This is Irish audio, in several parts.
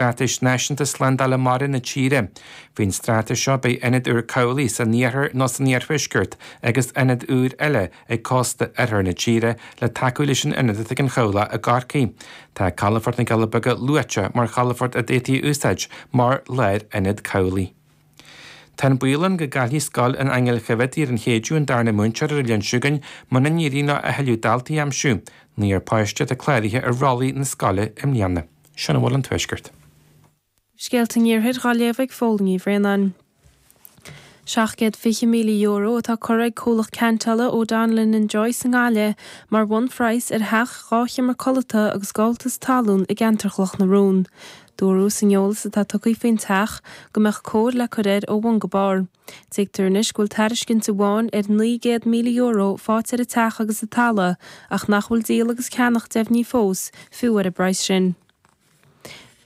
Straitéis Náisiúnta Slándála Mara na tíre. Faoin straitéis seo beidh ionad úr cabhlaigh san iarthar nó san iarthuaisceart agus ionad úr eile ag cósta oirthear na tíre le tacú leis an ionad atá ag an chabhlach i gCorcaigh. Tá calafort na gCealla Beaga luaite mar chalafort a d'fhéadfaí a úsáid mar lárionad cabhlaigh. Tá an baol ann go gcaillfidh scoil an Aingil Choimhéadaí ar an Chéideadh an darna múinteoir ar an Luan seo chugainn muna n-éiríonn leo a thuilleadh daltaí a aimsiú. Naoi bpáiste déag atá cláraithe ar rollaí na scoile i mbliana. Sin a bhfuil an Tuaisceart. Scéalta an Iarthair dhá léamh ag Pól Ó Braonáin. €720,000 atá curtha ag comhlacht ceantála O'Donnellan and Joyce i nGaillimh mar bhunphraghas ar theach dhá sheomra codlata agus gabháltas talún i gceantar Chloch na Rón. Dúradh san eolas atá tugtha faoin teach go mbeadh cóir le cur air ó bhun go barr. Tuigtear anois go bhfuil tairiscint amháin ar €900,000 faighte ar an teach agus an talamh ach nach bhfuil díol agus ceannach deimhnithe fós, fiú ar an bpraghas sin.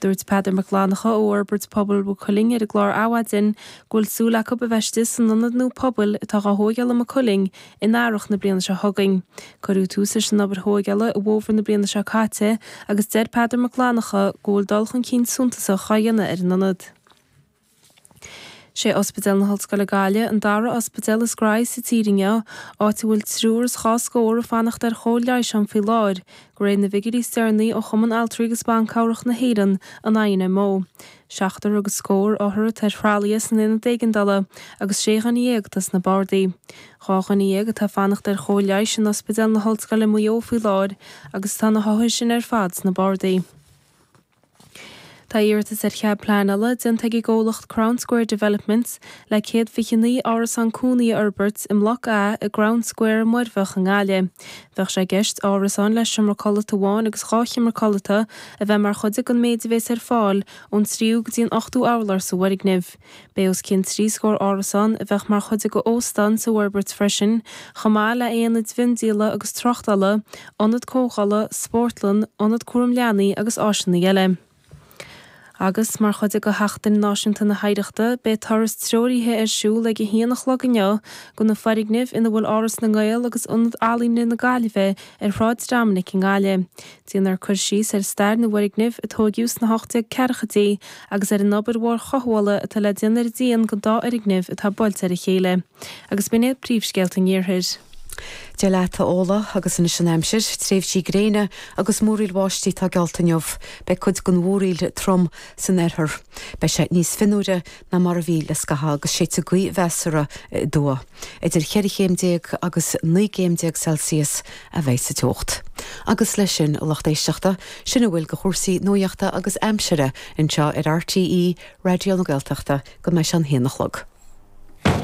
Dúirt Peadar Mac Fhlannacha ó Fhorbairt Pobail Mhaigh Cuilinn ar an gclár Adhmhaidin go bhfuil súil acu a bheith istigh san ionad nua pobail atá á thóigeáil i Maigh Cuilinn In earrach na bliana seo chugainn. Cuireadh tús leis an obair thóigeála i bhfómhar na bliana seo caite agus deir Peadar Mac Fhlannacha go bhfuil dul chun cinn suntasach á dhéanamh ar an ionad. Sé Ospidéal na hOllscoile Gaillimh an dara ospidéal is gnóthaí sa tír inniu, áit a bhfuil triúr is dhá scór ag fanacht ar chóir leighis ann faoi láthair, de réir na bhfigiúirí is deireanaí ó Chumann Altraí agus Banchabhrach na hÉireann, an INMO. Seachtar agus scór othar atá ar thralaithe san Aonad Éigeandála agus sé dhuine dhéag atá sna bardaí. Dhá dhuine dhéag atá ag fanacht ar chóir leighis in Ospidéal na hOllscoile i Maigh Eo faoi láthair agus tá na hothair sin ar fad sna bardaí. Tá iarratas ar chead pleanála déanta ag an gcomhlacht Crown Square Developments le céad fiche naoi árasán cónaí a fhorbairt i mBloc A i gCrown Square, Muirbheach i nGaillimh. Bheadh sé i gceist árasáin le seomra codlata amháin agus dhá sheomra codlata a bheith mar chuid den méid a bhéas ar fáil ón tríú go dtí an ochtú hurlár sa bhfoirgneamh. Bheadh os cionn trí scór árasán a bheadh mar chuid d'óstán sa bhforbairt freisin chomh maith le haonaid mhiondíola agus tráchtála, ionad comhdhála, spórtlann, ionad cúraim leanaí agus áiseanna eile. Agus, mar chuid de Sheachtain Náisiúnta na hOidhreachta, beidh turas treoraithe ar siúl ag a haon a chlog inniu go na foirgnimh ina bhfuil Áras na nGael agus Ionad Ealaíne na Gaillimhe ar Shráid Dhoiminic i nGaillimh. Déanfar cur síos ar stair na bhfoirgneamh a tóigeadh sna hocht déag ceathrachaidí agus ar an obair mhór chothabhála atá le déanamh ar an díon den dá fhoirgneamh atá buailte ar a chéile. agus b'in iad príomhscéalta an iarthair. Dia leat a Ola agus anois an aimsir, tréimhsí gréine agus múraíl bháistí atá geallta inniu. Beidh cuid den mhúraíl trom san oirthear. Beidh sé níos fionnuaire ná mar a bhí le scaitheamh agus séidfidh gaoth mheasartha aduaidh. Idir cheithre chéim déag agus naoi gcéim déag Celsius a bheidh sa teocht. Agus leis sin, a lucht éisteachta, sin a bhfuil de chúrsaí nuaíochta agus aimsire anseo ar RTÉ Raidió na Gaeltachta go mbeidh sé an haon a chlog.